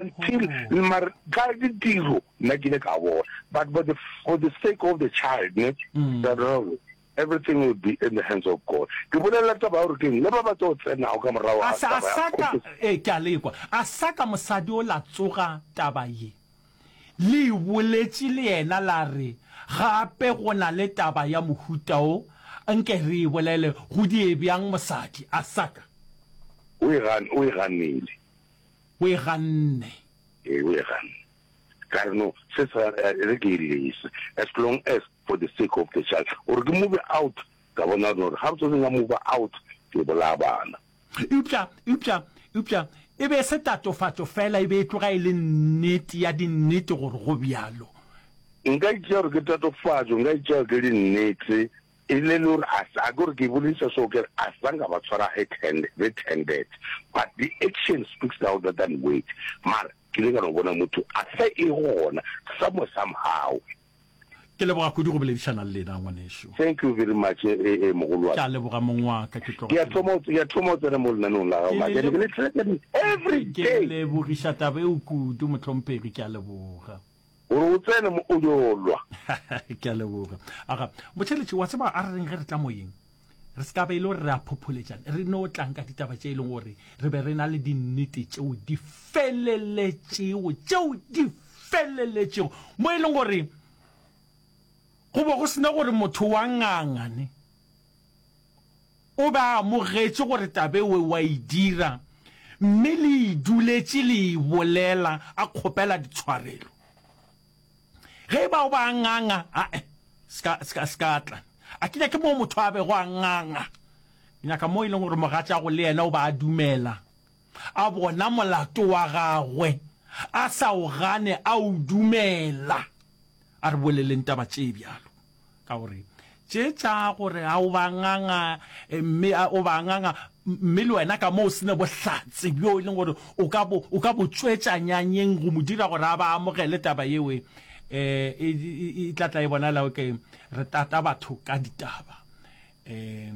Until mare ka ditiro nna ke ile ka bona but for the, for the sake of the child ne that mm. everything will be in the hands of God ke bolelela taba gore keng le ba ba tlo tsenago ka morago a sa sa ka e eh, ke a lekwa a sa ka mosadi o la tsoga taba ye le boletše le yena la re gape go na le taba ya mohuta o nke re e bolele go die bjang mosadi a sa ka o e ganile O e ganne. Ee, o e ganne. Ka re, No, se sa re ke e lese, as long as for the sake of the child. O re ke move out, ka bona no re ga re tswetseng ka move out, ke bolaya bana. Eupša, eupša, eupša e be e se tatofatšo feela, e be e tloga e le nnete ya dinnete gore go bjalo. Nka e tšea gore ke tatofatšo, nka e tšea gore ke dinnete, E rile le gore a sa, ke gore ke bolediša seo ke re a sa nka ba tshwara red-hand, red-handed but the action speaks louder than word mara ke ile ka no bona motho a sa e gona somewhere somehow. Ke leboga kudu go boledišana le lena ngwanešu. Thank you very much e, e, e mogolo wa Ke a ka. leboga mong wa ka ke tloga Ke a ke thoma, ke a thoma o tsena mo lenaneong la gago Ke maka, le ke le lebo- threaten every ke day. lebogiša taba eo kudu mohlomphegi ke a leboga. gore o tsene mo o yo lwa. Ke a leboga. Aga, Botheletši, wa tseba a re reng ge re tla moyeng? Re se ka be e le gore re a phopholetšana, re no tlang ka ditaba tše e leng gore re be re na le dinnete tšeo di feleletšego, tšeo di feleletšego, mo e leng gore go be go se na gore motho wa ngangane. O be a amogetše gore taba eo o a e dira, mme le e duletše le e bolela, a kgopela ditshwarelo. Ge e ba o ba a nganga, a-e, se ka, se ka, se ka tla. A ke nyake moo motho a bego a nganga. Ke nyaka moo e leng gore mogatšago le yena o ba a dumela, a bona molato wa gagwe, a sa o gane, a o dumela. A re boleleng taba tše bjalo, ka gore tše tša gore a o ba nganga, mme a o ba nganga, mme le wena ka mo o se ne bohlatse bjo e leng gore o ka bo, o ka bo tšwetša nyanyeng go mo dira gore a ba amogele taba yeo, e, e, e tla tla e bonala o ke re tata batho ka ditaba. E,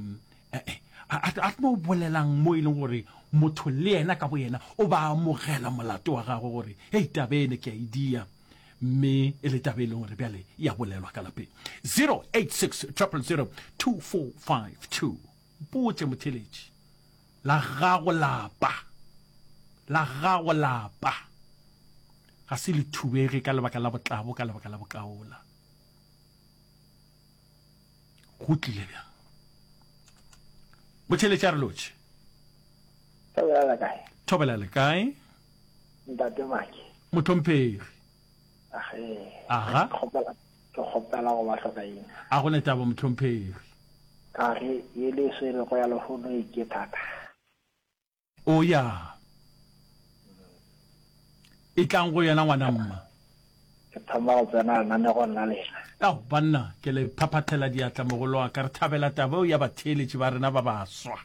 e, e, a, a, a tlo bolelang mo e leng gore motho le yena ka boyena o ba amogela molato wa gagwe gore, hei, taba ene ke a e dia. mme e le tabe e leng gore bjale e a bolelwa ka lapeng 086 000 2452 mpotse motheletši la gago lapa la gago lapa ga se le thubege ka lebaka la botlabo ka lebaka la bokaola Go tlile bjang? Go tšheletša re lotšhe. Thobela le kae? Thobela le kae? Ntate Maki. Motlhomphegi. Ahe. Aha. Kgopela ke kgopela go ba hloka eng? A go ne taba motlhomphegi. Ka re e le swere go ya lehono e ke thata. O ya. Etlang go yena, ngwana mma. Ke thoma go tsena lenanegong la lena. Ao, banna, ke le phaphathela diatla, mogolo wa ka. Re thabela taba eo ya batheeletši ba rena ba baswa.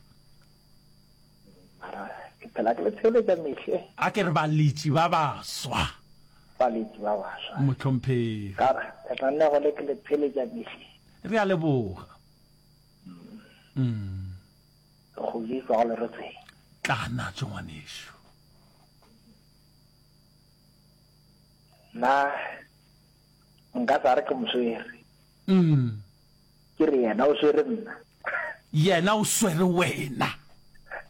Mara, ke phela ke le theeletša mehle. A ke re baletši ba baswa. Baletši ba baswa. Mohlomphegi. Ka re, lenanego le ke le theeletša mehle. Re a leboga. Mm. Go Jesu go leretsweng. Tla natswe ngwanešu. Na nka sa re ke moswere. Mm. Ke re yena o swere nna. Yena o swere wena.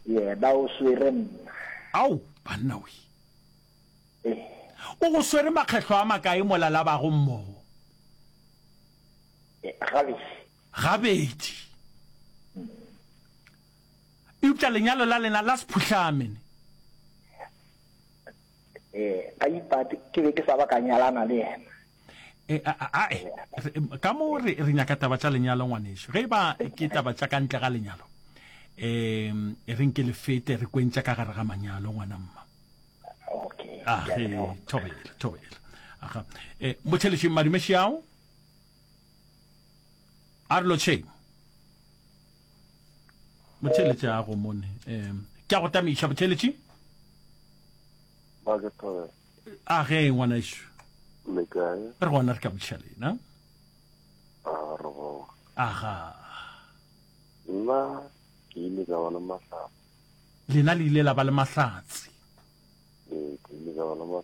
Yena o swere nna. Ao, banna we. Eh. O go swere makgetlo a makae molalabago mmogo? Eh, gabedi. gabedi. Eupša lenyalo la lena la sephuhlame ne. Ee, a ipate, ke be ke sa ba ka nyalana le yena. E, a, a, ae, re, ka mo re, re nyaka taba tša lenyalo ngwanešu. Ge e ba ke taba tša ka ntle ga lenyalo, um re nke le fete re kwentša ka gare ga manyalo ngwana mma. Okay. Age, thobela, thobela. Aga. Eh, Motšhelešeng madume šiao. a re lotšheng motheletši a go mone um ke a go tamiša motheletši a ge ngwana ešo re gona re ka botšha lena aga nna ke ile ka ba le mahlatsi lena le ile la ba le mahlatsi ee ke ile ka ba le mahlatsi